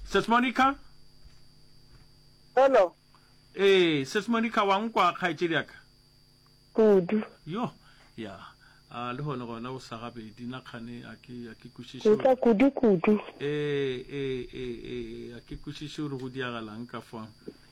Sis Monica? Hello. Eh, Sis Monica wa nkwa kgaetšedi ya ka? Kudu. Yo, ya. A le hone gona o sa gabedi na kgane a ke a ke kwešiše. Ntla kudu kudu. Eh, eh, eh, eh, a ke kwešiše gore go diagalang ka fa.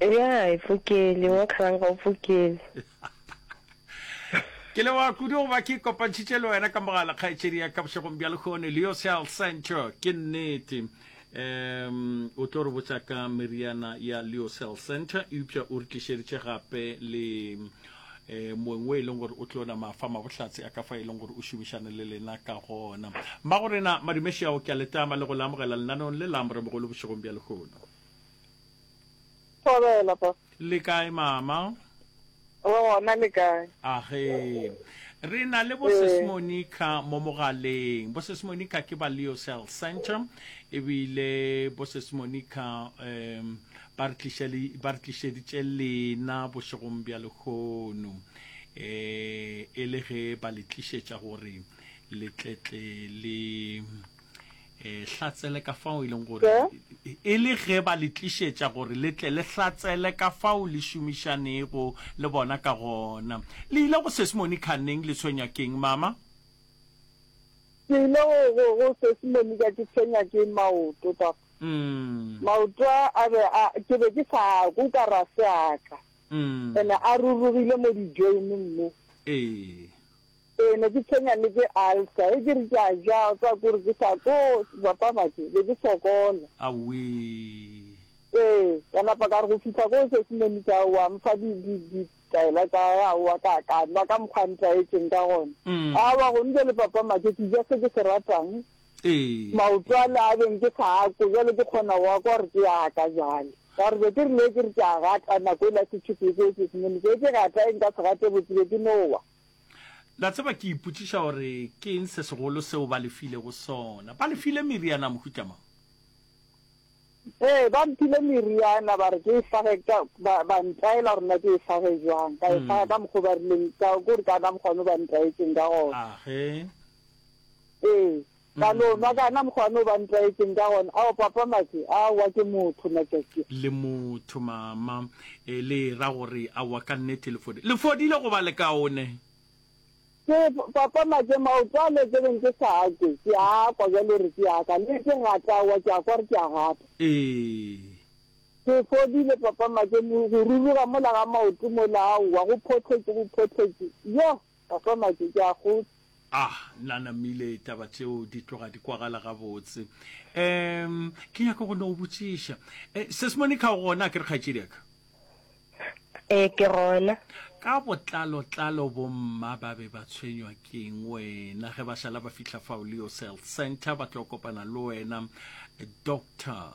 Ya, e fokele, wa kgalanga o fokele. Ke leboga kudu go ba ke kopantšhitše le wena ka mogala kgaetšedi ya ka bošegong bja lekgone leo se al centro ke nnete um o tlo re botsa ka meriana ya leocell center eupša o re tlišeditše gape le eh moeng o e leng gore o tlo na mafa mabohlatse a ka fa e leng gore o šomišane le lena ka gona mma go rena madumešeago ke a letama le go le amogela lenanong le la moremogolo bošegong bja lehono Thobela, Pastor. Le kae mama? Re gona le kae? Age. Re na le Bosses Ee. Monica mo mogaleng. Bosses Monica ke ba Leo Cell Center ebile Bosses Monica um ba re tlišele ba re tlišeditše lena bošegong bja lehono um e le ge ba le tlišetša gore le tletle le e hlatsele ka fao e leng gore e le ge ba le tlišetša gore le tle le hlatsele ka fao le šomišanego le bona ka gona le ile go sesimoni kganneng le tshwenya keng mama ke ile go sesimoni ka ke tshwenya ke maoto papa mm. maoto a be ke be ke sa ko ka ra seaka mm. ene a rurugile mo dijoineng mo ee Ee, ne ke tshwenya le ke ulcer, ge ke re ke a ja, o tseba kore ke sa tlo bapa batho, be ke sokola. Awee. Ee, ka napa ka re go fihla koo sesimane sa gagwe wa mfa di, di, di, ditaela tsa gagwe, aowa ka ka nwa ka mokgwa a ntlwaetseng ka gona. Mm. Aowa, gone jwale papa Matšhe, ke ja se ke se ratang, Ee. maoto a le a beng ke sa a kwe, jwale ke kgona go a kwa gore ke a ka jwale. Ka gore be ke rile ge ke re ke a gata, nako e la se tšhuphe koo sesimane seo, ke gata eng ka se gate botse, be ke no wa. La tseba, ke ipotšiša gore ke eng se segolo seo ba le filego sona. Ba le file meriana ya mohuta mang? Ee, ba mphile meriana, ba re ke e fage ka, ba, ba ntaela gore na ke e fage jwang. Ka e faga hmm. ka mokgwa o ba rileng, ka, kore ka ka mokgwa o ba ntaetseng ka gona. Ahe. Ee, Ka no nwa kana mokgwa no ba ntlwaetšeng ka gona. Ao, Papa Maki, a wa ke motho, ngaka ke. Le motho, Mama. E le e ra gore a wa ka nnete le fodile. Le fodile go ba le kaone. Ke, Papa Maki, maoto a le ke beng ke sa a kwe, ke a a kwa bjalo gore ke a ka. Le ke gata a wa, ke a kwa gore ke a gata. Ee. Ke fodile, Papa Maki, go ruruga mola ga maoto mola, aowa, go phohletše, go phohletše. Yoh! Papa Maki, ke a go. Ah, nna namile, taba tšeo di tloga di kwagala gabotse. Um, ke nyaka go no go botšiša. Eh, Ses Monica o gona, ke re kgaetšediaka? Eh, ke gona. Ka botlalo-tlalo bomma ba be ba tshwenywa keng wena ge ba šala ba fihla fao Leo Cell Center ba tlo kopana le wena Doctor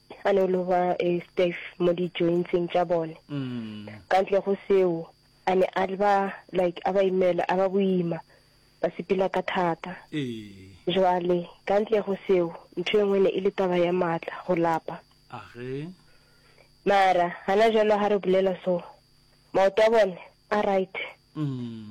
A no lo ba e stiff mo di jointseng tša bone. Ka ntle go seo, a ne a ba like a ba imela, a ba boima, ba sepela ka thata. Jwale, ka ntle go seo, ntho e nngwe ne e le taba ya maatla, go lapa. Mara, gana jwalo ga re bolela so, maoto a bone a right.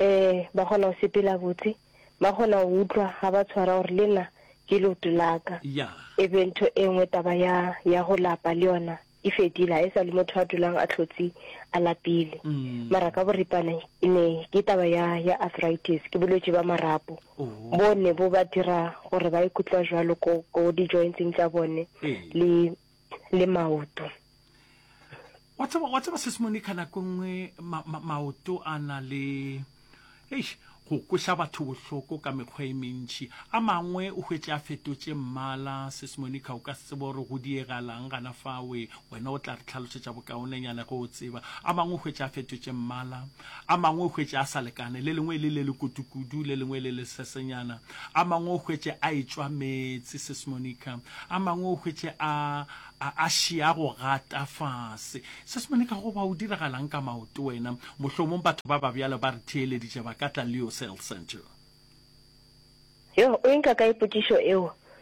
Ee, ba kgona go sepela botse. Ba kgona go utlwa ga ba tshwara gore le nna ke leoto la ka. Ya. E be ntho e nngwe taba ya, ya go lapa le yona e fedile, ga e sa le motho a dulang a tlhotse a lapile. Mara ka boripana e ne ke taba ya, ya arthritis, ke bolwetši ba marapo Oho. bo ne bo ba dira gore ba ikutlwa jwalo ko, ko di-joints-eng tša bone Ee. le le maoto. Wa tseba wa tseba sesmone ka nako nngwe ma, ma, maoto a na le eish go kweša batho bohloko ka mekgwa e mentši a mangwe o hwetše a fetotše mmala sesmone ka o ka se tsebe gore go diegalang gana fawe wena o tla re tlhalošetša bokaonenyana ge o tseba a mangwe o hwetše a fetotše mmala a mangwe o hwetše a sa lekane le lengwe le le le kudu le lengwe le le sesenyana A mangwe o hwetše a etšwa meetse, Sis Monica. A mangwe o hwetše a, a, a šia go gata fase. Sis Monica, goba o diragalang ka maoto wena? Mohlomong batho ba ba bjalo ba re theeleditše ba ka tla Leo Cell Centre. Yoh, o e nka kae potšišo eo?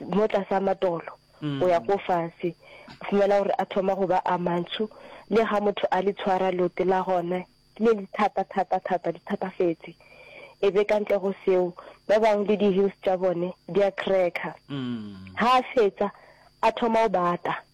mo tlase a matolo go ya ko fase o fumana gore a thoma go ba a mantsho le ga motho a le tshwara lote la gone le le thata thata thata di thatafetse e be ka ntle go seo ba bangwe le di-hills tša bone di a cracker ga a fetsa a thoma o bata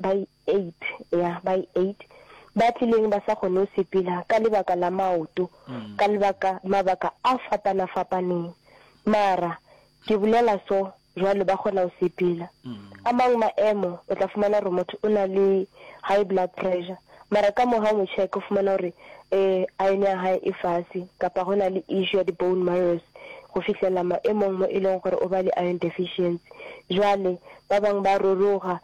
ba i eight ya ba i eight ba tlileng ba sa kgone go sepela ka lebaka la maoto mm. ka lebaka mabaka a fapana fapaneng mara ke bolela so jwalo ba kgona go sepela mm. a mangwe maemo o tla fumana gore motho o na le high blood pressure mara ka moga o mo check o fumana gore um iron ya gae e fase kapa go na le issue ya di-bone marrows go fitlhelela maemong mo e leng gore o ba le iron deficiency jwale ba bangwe ba roroga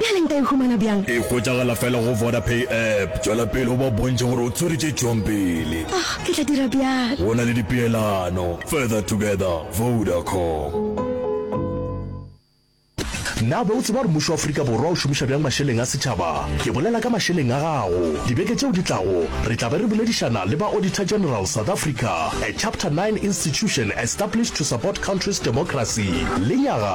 Bjale nka e humana bjang? E hwetšagala fela go Vodapay app. Tšwela pele o ba bontšhe gore o tswere tše tšwang pele. Oh, ke tla dira bjalo. Go na le dipeelano. Further together, Vodacom. Na be o tseba gore mmušo wa Afrika Borwa o šomiša bjang mašeleng a setšhaba? Ke bolela ka mašeleng a gago. Dibeke tšeo di tlago, re tla be re boledišana le ba Auditor General South Africa, a Chapter Nine institution established to support country's democracy, le nyaga.